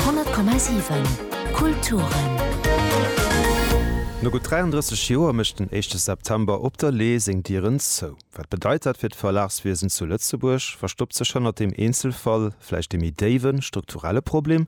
100,7 Kulturen. No gutt 33 Joer mécht den éischte September op der Lee seng Dieren zou. Wat bedeit dat fir d'Verlagswiesen zu Lëtzebuerg? Verstoppt sech hannert deem Eenzelfall vläicht ee méi déiwen, strukturelle Problem?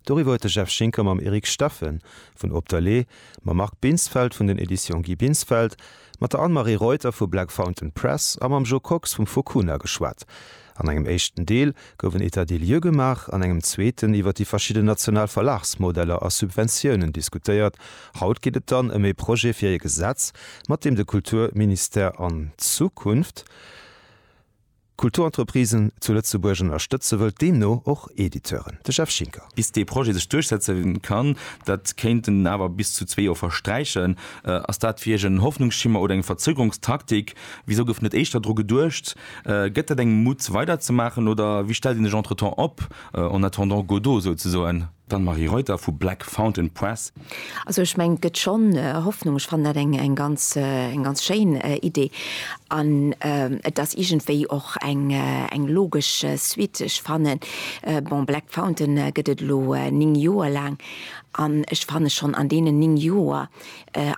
Doriwwer huet de Jeff Schinker mam Eric Steffen vun Op der Lee, mam Marc Binsfeld vun den Editions Guy Binsfeld, mat der Anne-Marie Reuter vu Black Fountain Press a mam Jo Kox vum Fokuna geschwat. An engem éischten Deel gouf en État des lieux gemaach, an engem zweeten iwwer déi verschidden national Verlagsmodeller a Subventiounen diskutéiert. Haut geet et dann ëm ee Projet fir ee Gesetz, mat deem de Kulturministère an Zukunft Kulturentreprisen zu Lëtzebuerg ënnerstëtze wëllt, deemno och Editeuren. De Jeff Schinker. Bis dee Projet sech duerchsetze kann, dat kéinten awer bis zu zwee Joer versträichen. Ass dat fir Iech en Hoffnungsschimmer oder eng Verzögerungstaktik? Wisou gouf net éischter dru geduecht? Gëtt dat engem Mut weider ze maachen oder wéi stellt een sech entretemps op, en attendant Godot souzesoen? D'Anne-Marie Reuter vu Black Fountain Press. Also ech mengen et gëtt schonn Hoffnung. Ech fannen dat eng ganz schéin Idee an et ass iergendwéi och eng logesch Suite. Ech fanne bon Black Fountain gëtt et elo 9 Joer laang an ech fanne schonn an deenen 9 Joer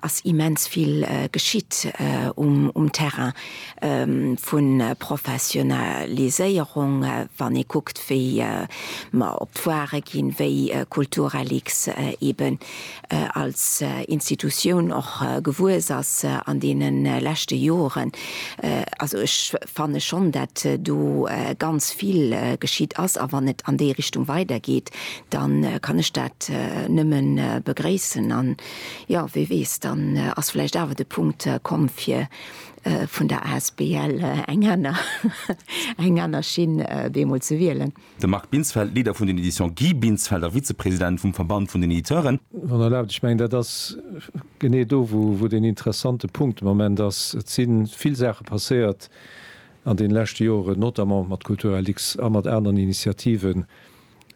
ass immens vill geschitt um Terrain vu Professionaliséierung, wann ee kuckt wéi mer op d'Foire ginn, wéi Kulturreliks eben als Institutioun och gewuess ass an deene leschte Joren. Also ech fanne schonn, dat do ganz vill geschitt ass a wann et an déi Richtung weidergeet, da kann ech dat nëmme begréissen. Jo, wie weess, dann ass vläicht awer de Punkt komm, fir vun der asbl eng aner, eng aner Schinn bemol ze wielen. De Marc Binsfeld, Leader vun den Editions Guy Binsfeld a Vizepresident vum Verband vun den Editeuren. Wann Der erlaabt, ech mengen, dat ass genee do, wou den interessante Punkt de Moment ass. Et si vill Saache passéiert an deene leschte Joren, notamment mat Kulturellix a mat aneren Initiativen,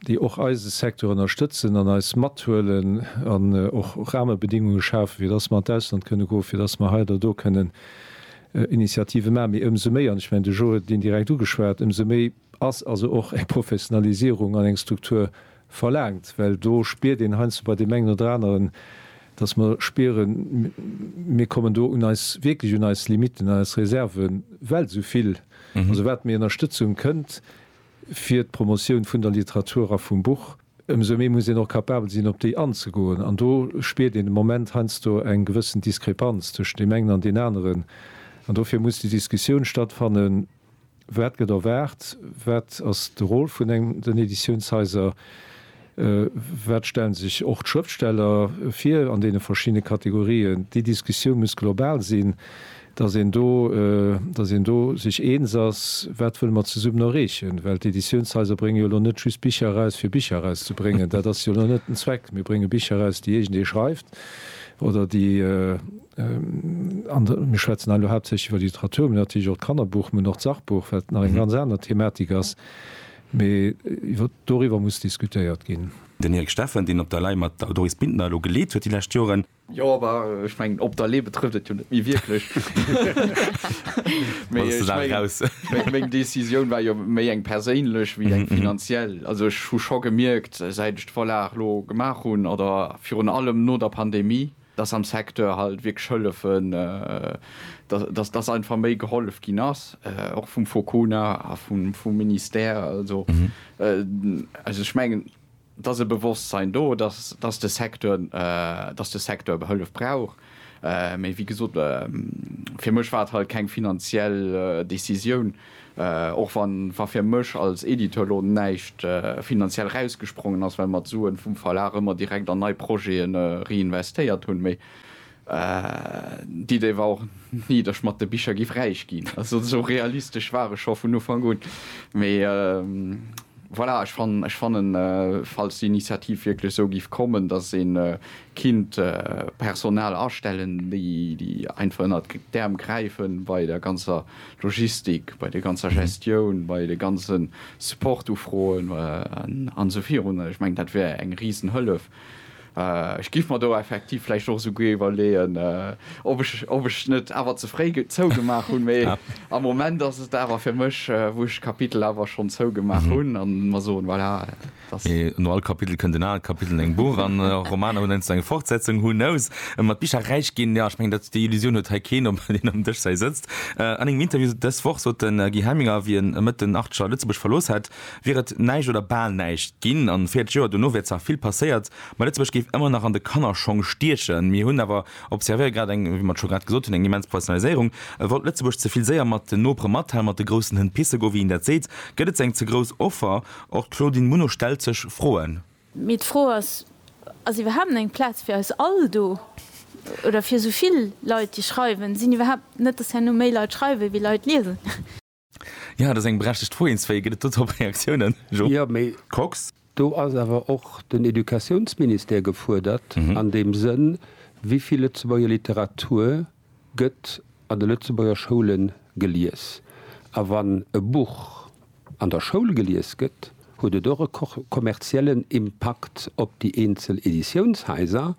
déi och eise Secteur ënnerstëtzen an eis mathuelen an och Rahmebedingunge schafen, fir dass mer an d'Ausland kënne goen, fir dass mer hei oder do kënnen Initiative maachen. Mee ëmsou méi, an ech mengen, de Joe huet et indirekt ugeschwat, ëmsou méi ass also och eng Professionalisierung an eng Struktur verlaangt, well do spiert een heiansdo bei deem engen oder aneren, dass mer spieren, mir kommen do un eis, wierklech un eis Limitten, un eis Reserven, well esou vill, also wat méi Ënnerstëtzung kënnt, fir d'Promotioun vun der Literatur a vum Buch, ëmsou méi muss een och capabel sinn, op déi anzegoen. An do spiert een de Moment heiansdo eng gewëssen Diskrepanz tëschent deem engen an deen aneren. An dofir muss déi Diskussioun stattfannen, Wat gëtt erwaart? Wat ass de Rôle vun den Editiounshaiser? Wat stellen sech och d'Schrëftsteller vir an deene verschiddene Kategorien? Déi Diskussioun muss global sinn, datt een do, datt een do sech eens ass, wat wëlle mer zesummen erreechen. Well d'Editiounshaiser brénge jo elo net just Bicher eraus, fir Bicher erauszebréngen. Dat ass jo elo net den Zweck. Mir brénge Bicher eraus, déi iergendee schreift oder déi an de, mir schwätzen hei elo haaptsächlech iwwer d'Literatur, mä natierlech och d'Kannerbuch, mä och d'Sachbuch, wat nach eng ganz aner Thematik ass. Mee doriwwer muss diskutéiert ginn. Den Eric Steffen, deen op der Lay mat der Doris Bintner elo geleet huet déi lescht Joren. Jo, awer ech mengen, op der Lay betrëfft et jo net méi wierklech. Mee ech mengen, meng Decisioun war jo méi eng perséinlech wéi eng finanziell. Also ech hu scho gemierkt, säit ech d'Vorlag elo gemaach hunn, oder virun allem no der Pandemie, dass am Secteur halt wierklech hëllefen, dass, dass einfach méi gehollef ginn ass, och vum Focona a vum Ministère. Also, also ech mengen, et ass e Bewosstsein do, dass, dass de Secteur, dass de Secteur Hëllef brauch. Mee wéi gesot, fir mech war et halt keng finanziell Décisioun. Och wa fir mech als Editeur elo näischt finanziell erausgesprongen ass, well mer d'Suen vum Verlag ëmmer direkt an nei Projete reinvestéiert hunn, mee d'Idee war och ni, datt ech mat de Bicher giff räich ginn. Also esou realistesch war ech scho vun Ufank un. Mee voilà, ech fannen, falls d'Initiativ wierklech esou giff kommen, datt ee kinnt Personal astellen, déi einfach ënnert d'Äerm gräife bei der ganzer Logistik, bei der ganzer Gestioun, bei de ganze Support-Ufroen an esou virun. Ech mengen, dat wär eng Risenhëllef. Ech giff mer do effektiv vläicht och esouguer iwwerleeën, ob ech net awer ze fréi zougemaach hunn. Mee am Moment ass et awer fir mech, wou ech d'Kapitel awer schonn zougemaach hunn an mer soen, voilà. Mee no all Kapitel kënnt en anert Kapitel an engem Buch, an Romaner hunn heiansdo eng Fortsetzung, who knows? Mat Bicher räich ginn, jo, ech mengen, dat déi Illusioun huet hei keen, obwuel een ëm Dësch säi sëtzt. An engem Interview dës Woch sot de Guy Hemminger, wéi en Mëtten Artscher Lëtzebuerg verlooss hätt, wier et näischt oder bal näischt ginn an 40 Joer dono wier zwar vill passéiert, ma Lëtzebuerg géif ëmmer nach an de Kannerschong stiechen. Mir hunn awer observéiert, grad eng, wéi mer et scho grad gesot hunn, eng immens Professionaliséierung. Wollt Lëtzebuerg ze vill séier mat den Nopere mathalen, mat de groussen Hënn pisse goen, wéi een dat seet? Gëtt et ze eng ze grouss Offer? Och d'Claudine Muno stellt sech Froen. Mee d'Fro ass, Ass iwwerhaapt eng Plaz fir eis all do? Oder fir esou vill Leit, déi schreiwen? Sinn iwwerhaapt net, dass herno méi Leit schreiwen, ewéi Leit liesen? Jo, dat ass eng berechtegt Fro. Eenzwéi gëtt et do dorop Reaktiounen, Jo Kox? Do ass awer och den Educatiounsministère gefuerdert an deem Sënn, wéi vill Lëtzebuerger Literatur gëtt an de Lëtzebuerger Schoule gelies. A wann e Buch an der Schoul gelies gëtt, huet et och e kommerziellen Impakt op déi eenzel Editiounshaiser.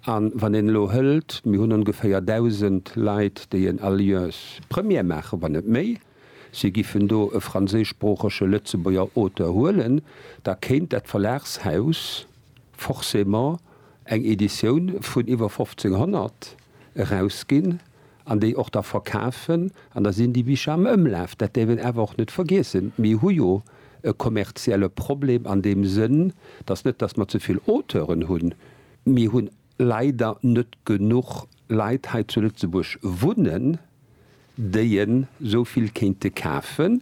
A wann een elo hëlt, mir hunn ongeféier 1.000 Leit, déi en Alliance Première maachen, wann net méi, si giffen do e franséischsproochege Lëtzebuerger Auteur huelen, da kéint dat Verlagshaus, forcément eng Editioun vun iwwer 1500 erausginn an déi och da verkafen an da sinn déi Bicher am Ëmlaf. Dat däerf een awer och net vergiessen. Mir hu jo e kommerzielle Problem an deem Sënn, dass net dass mer ze vill Auteuren hunn, mir hunn leider net genuch Leit hei zu Lëtzebuerg wunnen, déi en esou vill kéinte kafen.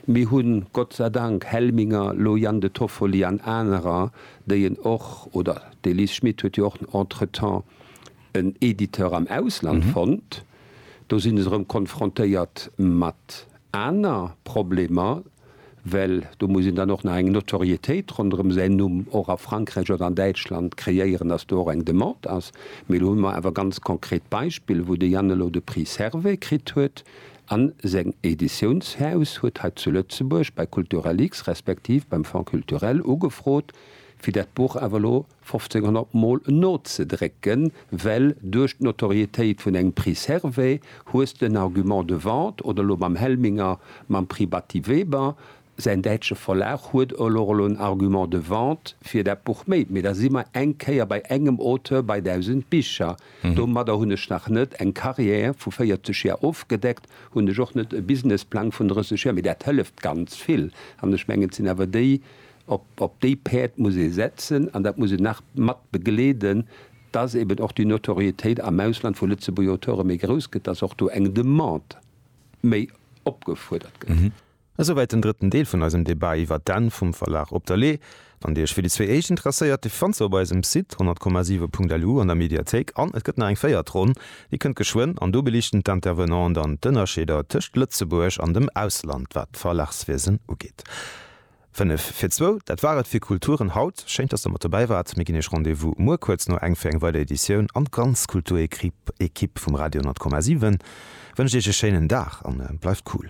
Mir hu Gott sei Dank Helminger, elo Jan de Toffoli an anerer, déi en och, oder d'Elise Schmit huet jo och entretemps en Editeur am Ausland fonnt. Do sinn se erëm konfrontéiert mat aner Problemer. well do muss een dann och nach eng Notoriétéit ronderëm säin Numm och a Frankräich oder an Däitschland kreéieren, dass do och eng Demande ass. Mee elo hu mer awer ganz konkret Beispiller, wou de Yann elo de Prix Servais kritt huet a seng Editiounshaus huet hei zu Lëtzebuerg bei Culturel-X respektiv beim Fonds culturel ugefrot, fir dat Buch awer elo, 1500 mol nozedrécken, well duerch d'Notorietéit vun engem Prix Servais hues de en Argument de vente, oder elo mam Helminger mam Prix Batty Weber, säin däitsche Verlag huet elo elo en Argument de vente fir dat Buch méi. Mee da si mer eng Kéier bei engem Auteur bei 1000 Bicher. Domadder hunn ech nach net eng Carrière vu 40 Joer ofgedeckt, hunn ech och net e Businessplang vun 30 Joer, mee dat hëlleft ganz vill. An ech mengen, et sinn awer déi Op déi Päerd muss ee setzen an dat muss een nach mat begleeden, dass eben och déi Notorietéit am Ausland vu Lëtzebuerger Auteure méi grouss gëtt, dass och do eng Demande méi opgefuerdert gëtt. Esouwäit den drëtten Deel vun eisem Debat iwwert d'Enn vum Verlag Op der Lee. Wann Dir Iech fir déi zwee éischt interesséiert, déi fannt Der op eisem Site 100,7.lu an der Mediathéik an et gëtt nach eng véiert Ronn, déi kënnt geschwënn an do beliichten d'Intervenanten dann d'Ënnerscheeder tëscht Lëtzebuerg an dem Ausland, wat d'Verlagswiesen ugeet. 5 fir zwou, dat war et fir Kulturen haut. Schéin, dass der mat dobäi waart. Mir ginn iech Rendez-vous muer kuerz no eng fir eng weider Editioun an d'ganz Kulturéquipe vum Radio 10,7 wënscht iech e schéinen Dag an bleift cool.